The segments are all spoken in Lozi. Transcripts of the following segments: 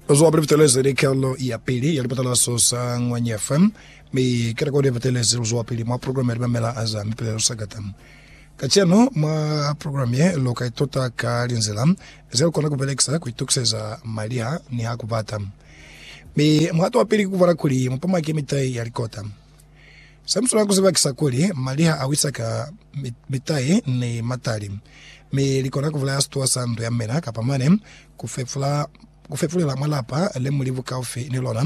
Uzwa pele butelezi ni kelo ya pili ya lipatalaso sa Ngwanya FM mi ke rekodi ya butelezi uzwa pili mwa program ya limamela aza mipelelo sagata. Kacenu mwa program ye lo ka ituta ka linzila ze lukona kubelekisa ku itukiseza maliha ni ha kubata. Mi muhato wa pili ki kubona kuli mupamaki mitai ya likota. Se mu swanela ku ziba ki sa kuli, mali ha a wisa ka mitai ni matali, mi li kona ku bulaya situwa sa ndu ya mina kapa mane ku fepula ku fepulela mwa lapa le mu li bukaufi ni lona.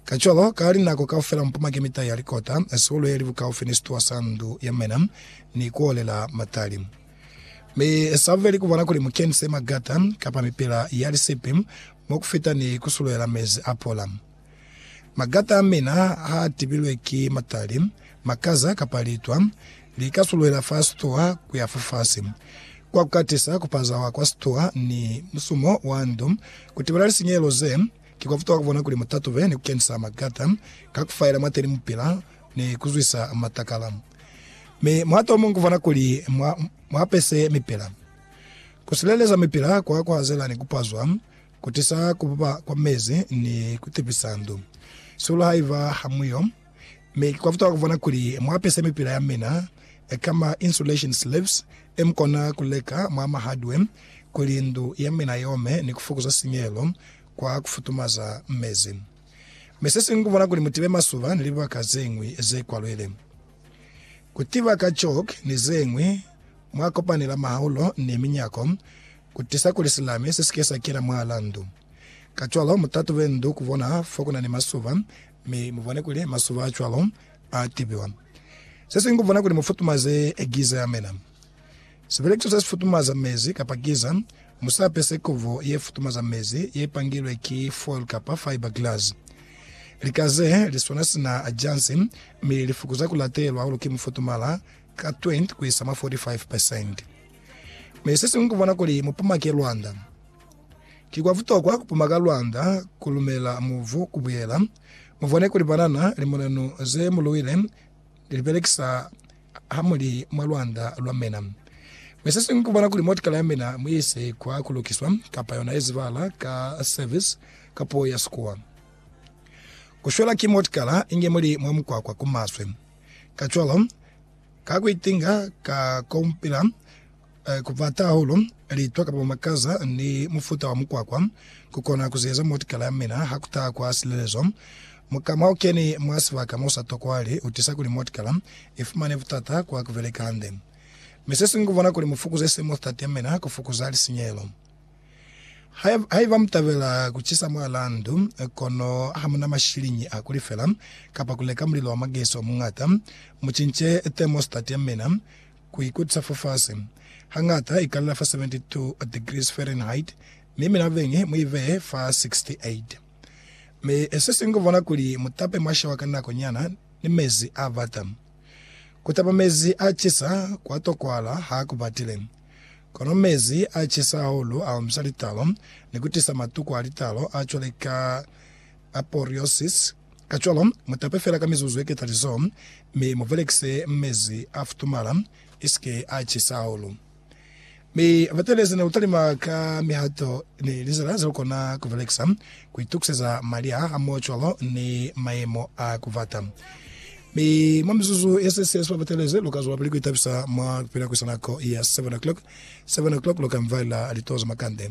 Kacwalo, ka linako kaufela mu pama ki mitai ya likota, sihulu ye li bukaufi ni situwa sa ndu ya mina, ni ku olela matali. Mi sa buleli ku bona kuli mu kenise magata kapa mipila ya lisipi mo ku fita ni ku suluela mezi a pola. Magata a mina ha a tibilwe ki matali, makaza, kapa litwa, li ka suluhela fa situha ku ya fafasi. Kwa ku katisa, ku pazawa kwa situha ni musumo wa ndu ku tibela lisinyehelo ze ki kwa futuha ku bona kuli mu tatube ni ku kenisa magata ka ku faela mwateni mu pila ni ku zwisa matakala. Mi muhato o muñwi ku bona kuli mwa apese mipila. Ku sileleza mipila kwa ku hazela ni ku pazwa. Kutisa kubupa kwa mezi ni kutipisa ndu. Sulu haiba hamuyo, mi ki kwafuta kuvona kuli muapise mipila yamina ka ma insulation slips e mukona kuleka mwa ma hardware kuli ndu yamina iome ni kufukuza sinyehelo kwa kufutumaza mezi. Mi sesiñwi kuvona kuli mutibe masuba ni libaka zeñwi ze kwalwele. Kutiba ka chalk ni zeñwi mwa kopanela mahaulo ni minyako. Ku tisa kuli silame se si ke sa kena mwalaa ndu. Kacwalo mu tatube ndu ku bona fo ku na ni masuba, mi mu bone kuli masuba a cwalo a tibiwa. Se siñwi ku bona kuli mu futumaze giza ya mina. Sibelekiso se si futumaza mezi kapa giza, mu sa pese kubo ye futumaza mezi ye pangilwe ki foil kapa fiber glass. Lika ze li swana sina jansi, mi li fukuza ku latelwa hahulu ki mufutumala ka 20 ku isa mwa 45 pesente. Mi sesiñwi kubona kuli mupumake lwanda. Ki kwa butokwa kupumaka lwanda, kulumela muvu kubuyela, mubone kuli banana limonanu ze muluwile lilibelekisa hamuli mwa lwanda lwa mina. Mi sesiñwi kubona kuli motikala yamina muise kwa kulukiswa, kapa yona yezibala ka service ka puo ya Sikuwa. Kushwela ki motikala inge muli mwa mukwakwa kumaswe. Kacwalo, Ka ku itinga ka kaupela, ku pata hahulu litwa kapa makaza ni mufuta wa mukwakwa ku kona ku ziyeza motikala ya mina ha ku taha kwa silelezo. Muka mwa u keni mwa sibaka mo sa tokwahali u tisa kuli motikala i fumane butata kwa ku beleka hande. Mi se si ngu bona kuli mu fukuze semothtat ya mina ku fukuza lisinyehelo. Haiba mutabela kucisa mwalaa ndu, kono hamuna mashiliñi a kulifela kapa kuleka mulilo wa magesi omuñata, mucince thermostat yamina kuikutisa fafasi. Hañata ikalela fa 72 degrees Fahrenheit, mi mina beñi muibee fa 68. Mi sesiñwi kukubona kuli mutape mwashewa ka nako nyana ni mezi abata. Kutapa mezi acisa kwatokwahala hakubatile. Kono mezi a cisa hahulu a omisa litalo ni ku tisa matuku a litalo a cwale ka apouriosis. Kacwalo, mu tape fela ka mizuzu ye ketalizo, mi mu belekise mezi a futumala, isike a cisa hahulu. Mi batelezi ne lu talima ka mihato ni lizila ze lu kona ku belekisa ku itukiseza mali a hamoho cwalo ni mayemo a ku bata. Mi mwa mizuzu ye sesi ye subapatelezi, lu ka zwa pili ku itabisa mwa ku pila ku isa nako ya seven o'clock. Seven o'clock lu ka mvalela litoho za makande.